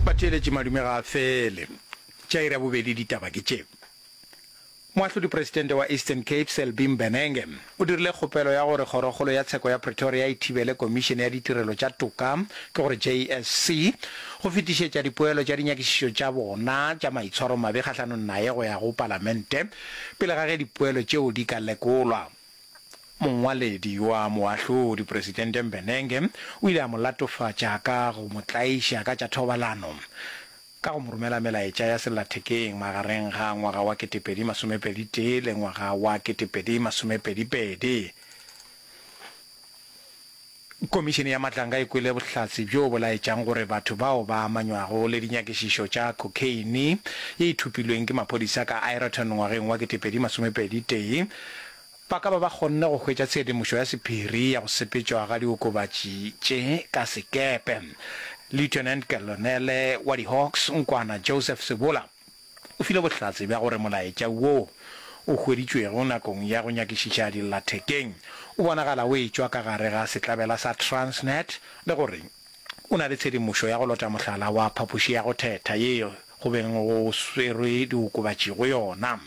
Batheeletši madume ga a fele. Tša iri ya bobedi ditaba ke tše. Moahlodipresidente wa Eastern Cape Selby Mbenenge o dirile kgopelo ya gore Kgorokgolo ya Tsheko ya Pretoria e thibele Komišene ya Ditirelo tša Toka ke gore JSC go fetišetša dipoelo tša dinyakišišo tša bona tša maitshwaromabe kgahlanong naye go ya go Palamente pele ga ge dipoelo tšeo di ka lekolwa. Mongwaledi wa Moahlodi Presidente Mbenenge o ile a mo latofatša ka go mo tlaiša ka tša thobalano ka go mo romela melaetša ya sellathekeng magareng ga ngwaga wa ketepedi masomepedi tee le ngwaga wa ketepedi masomepedi pedi. Komišene ya Matlanga e kwele bohlatse bjo bo laetšang gore batho bao ba amanywago le dinyakišišo tša khokheine ye e thopilweng ke maphodisa ka Ireton ngwageng wa ketepedi masomepedi tee ba ka ba ba kgonne go hwetša tshedimošo ya sephiri ya go sepetšwa ga diokobatši tše ka sekepe. Lieutenant Colonel wa di-Hawks, Nkwana Joseph Sebola, O file bohlatse bja gore molaetša wo o hweditšwego nakong ya go nyakišiša dillathekeng o bonagala o etšwa ka gare ga setlabela sa Transnet le gore o na le tshedimošo ya go lota mohlala wa phapoši ya go thetha ye go beng go swerwe diokobatši go yona.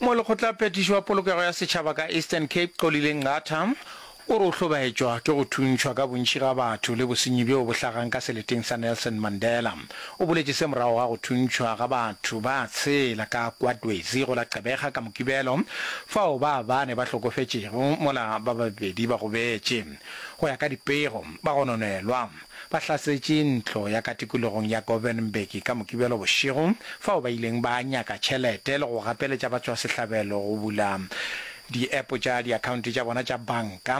Molekgotlaphethiši wa Polokego ya Setšhaba ka Eastern Cape, Xolile Nqatha, o re o hlobaetšwa ke go thuntšhwa ka bontši ga batho le bosenyi bjoo bo hlagang ka seleteng sa Nelson Mandela. O boletše se morago ga go thuntšhwa ga batho ba tshela ka kwa Twezi go la Gqeberha ka Mokibelo, fao ba bane ba hlokofetšego mola ba babedi ba gobetše. Go ya ka dipego, ba gononelwa. Ba hlasetše ntlo ya ka tikologong ya Govenberg ka Mokibelo bošego, fao ba ileng ba nyaka tšhelete le go gapeletša batšwasehlabelo go bula diepo tša diakhaonte tša bona tša banka,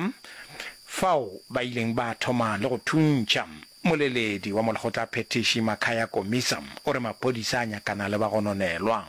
fao ba ileng ba thoma le go thuntšha. Moleledi wa molekgotla phethiši Makhaya Komisa o re maphodisa a nyakana le bagononelwa.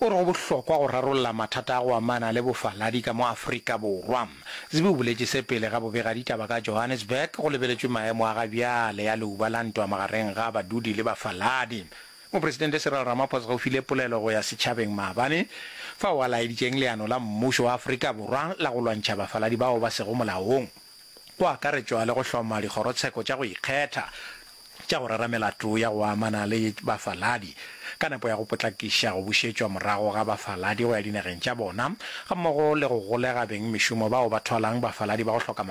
O re go bohlokwa go rarolla mathata a go amana le bofaladi ka mo Afrika Borwa. Zibhi o boletše se pele ga bobegaditaba ka Johannesburg go lebeletšwe maemo a ga bjale a leuba la ntwa magareng ga badudi le bafaladi. Mopresidente Cyril Ramaphosa o file polelo go ya setšhabeng maabane, fao a laeditšeng leano la mmušo wa Afrika Borwa la go lwantšha bafaladi bao ba sego molaong. go akaretšwa le go hloma dikgorotsheko tša go ikgetha tša go rera melato ya go amana le bafaladi ka nepo ya go potlakiša go bušetšwa morago ga bafaladi go ya dinageng tša bona, gammogo le go golega bengmešomo bao ba thwalang bafaladi ba go hloka mangwalo.